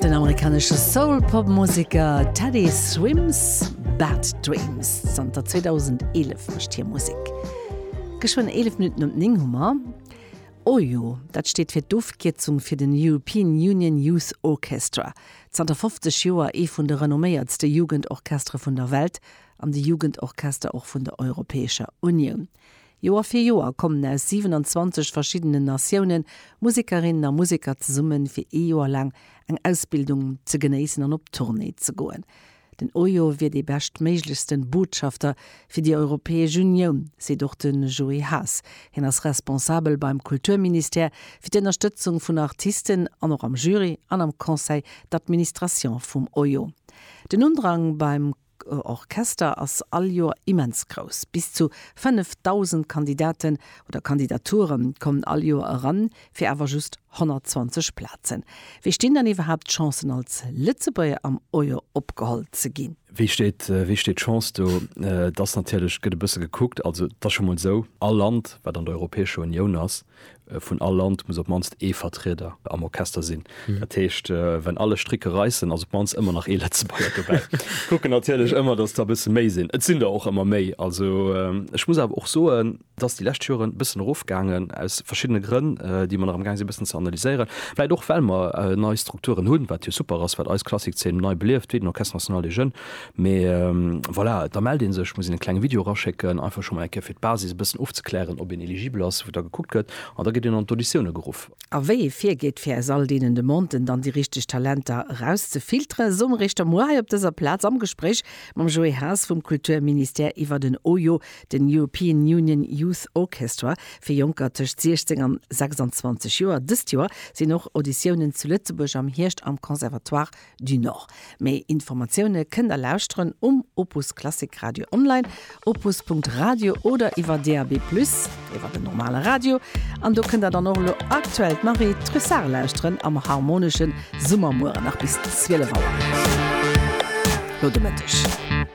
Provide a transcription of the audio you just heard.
Den amerikanesche Soul-Pop-Museker Teddy Swims Bad Dreams zanter 2011 mecht hier Musik. Geschwënn 11 Minuten um 9 Hummer. OYO, dat steet fir d'Ofkierzung fir den European Union Youth Orchestra, zanter 50 Joer ee vun de renomméiertste Jugendorchestere vun der Welt an de Jugendorchester och vun der Europäescher Unioun. Joer fir Joer kommen aus 27 verschiddenen Natiounen Musekerinnen a Museker zesummen, fir ee Joer laang eng Ausbildung ze genéissen an op Tournée ze goen. Den Ojo wier dee beschtméiglechsten Botschafter fir déi Europäesch Unioun, seet och de Joé Haas. Hien ass Responsabel beim Kulturministère fir d'Ënnerstëtzung vun Artisten an och am Jury an am Conseil d'Administration vum Ojo. Den Undrang beim. Orchester ass all Joer immens grouss. Bis zu 5.000 Kandidaten oder Kandidature kommen all Joer eran, fir awer just 120 Plazen. Wéi stinn dann iwwerhaapt d'Chancen als Lëtzebuerger am Oier opgeholl ze ginn? Wéi steet d'Chance do? Et ass natierlech, gëtt e bësse gekuckt, also et ass scho mol esou, all Land wat an der Europäescher Unioun ass, Vun all Land muss op d'mannst ee Vertrieder am Orchester sinn. Dat heescht, wenn alle Stricke reissen, ass op d'mannst ëmmer nach ee Lëtzebuerger dobäi. Kucken natierlech ëmmer, dass der e bësse méi sinn. Et sinn der och ëmmer méi. Also ech muss awer och soen, et ass déi lescht Joren e bëssen erofgaangen, aus verschiddene Grënn, déi mer nach amgaang sinn e bëssen ze analyséieren. Vläicht och well mer nei Strukturen hunn, wat jo super ass, wat eis Klassik-Zeen nei belieft, wéi den Orchestre National des Jeunes, Mee voilà, da mellt ee sech, muss een e klenge Video eraschécken, einfach scho mol eng Kéier fir d'Basis e bëssen ofzeklären, ob een eligibel ass, wou da gekuckt gëtt an da gëtt een an d'Auditioune geruff. A wéi ee virgeet, fir aus all deenen Demanden dann déi richteg Talenter erauszefilteren, soe mer iech da muer hei op dëser Plaz am Gespréich mam Joé Haas vum Kulturministère iwwert en oyo, den European Union Youth Orchestra fir Jonker tëscht 16 an 26 Joer. Dëst Joer sinn och Auditiounen zu Lëtzebuerg am Hierscht am Conservatoire du Nord. Méi Informatioune kënnt der lauschteren um Opus Klassik Radio online, opus.radio, oder iwwer DAB+ iwwer den normale Radio. An do kënnt der dann och elo aktuell d'Marie Trussart lauschteren am Harmonesche Summer mueren nach bis 12 Auer no de Mëtteg.